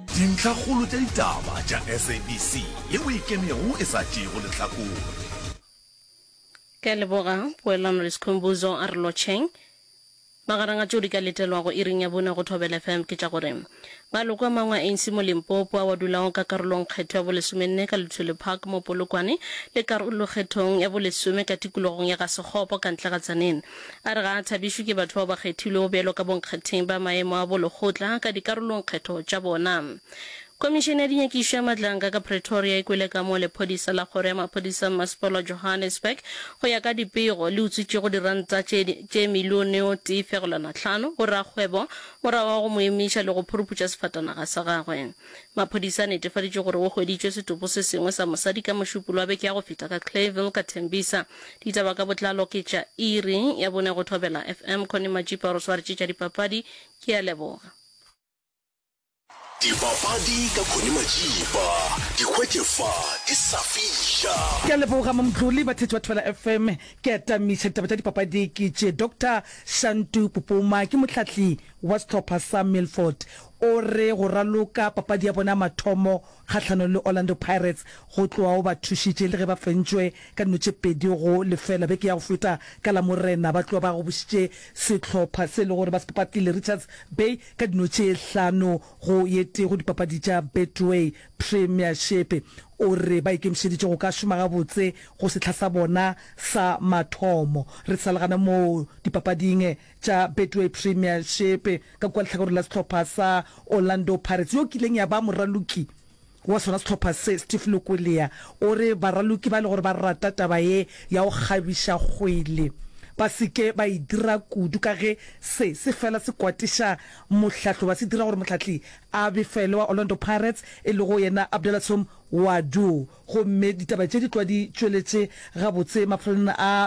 Dintlhakgolo tša ditaba tša SABC le mo ikemego e sa tšeego lehlakore. Ke a leboga, Poelano le Sikhumbuzo, a re lotšheng. Magareng a tšeo di ka letelwago iring ya bone go Thobela FM ke tša gore, Maloko a mangwe a ANC mo Limpopo ao a dulago ka karolongkgetho ya bolesomenne ka Luthuli Park mo Polokwane le karolokgethong ya bolesome ka tikologong ya ga Sekgopo ka ntle ga Tzaneen, A re ga a thabišwe ke batho bao ba kgethilwego bjalo ka bonkgatheng ba maemo a bolekgotla ka dikarolongkgetho tša bona. Khomišene ya dinyakišo ya matlanka ka Pretoria e kwele ka mo lephodisa la kgoro ya maphodisa mmasepala wa Johannesburg go ya ka dipego le utswitšego diranta tše tše milione o tee fegelwana hlano go rakgwebo morago ga go mo emiša le go phuruputša sefatanaga sa gagwe. Maphodisa a netefaditše gore go hweditšwe setopo se sengwe sa mosadi ka Mošupolo wa beke ya go feta ka Clayville ka Tembisa. Ditaba ka botlalo ke tša iri ya bone go Thobela FM. Connie Majipa re swaretše tša dipapadi. Ke a leboga. Dipapadi ka Connie Majipa. Di hwetše fa ke sa fiša. Ke a leboga Mamtlole. Batheetši ba Thobela FM, ke atamiša ditaba tša dipapadi ke tše Doctor Shantu Pupuma. Ke mohlahli wa sehlopha sa Milford. O re go raloka papadi ya bona ya mathomo kgahlanong le Orlando Pirates go tloga o ba thušitše le ge ba fentšwe ka dino tše pedi go lefela beke ya go feta ka Lamorena ba tloga ba gobošitše sehlopha se e le gore ba se papatile Richards Bay ka dino tše hlano go ye tee go dipapadi tša Betway Premiership. O re ba ikemišeditše go ka šoma gabotse go sehla sa bona sa mathomo re sa le gana moo dipapading. tša Betway Premiership ka kua lehlakoreng la sehlopha sa Orlando Pirates yo kileng ya ba moraloki wa sona sehlopha se, Steve Lukulia, o re baraloki ba e le gore ba rata taba ye ya go kgabiša kgwele ba se ke ba e dira kudu ka ge se se fela se kwatiša mohlahlo ba se dira gore mohlahli a befele wa Orlando Pirates e lego yena Abdelatshoum Ouaddou gomme ditaba tše di tlwa di tšweletše gabotse maphelong a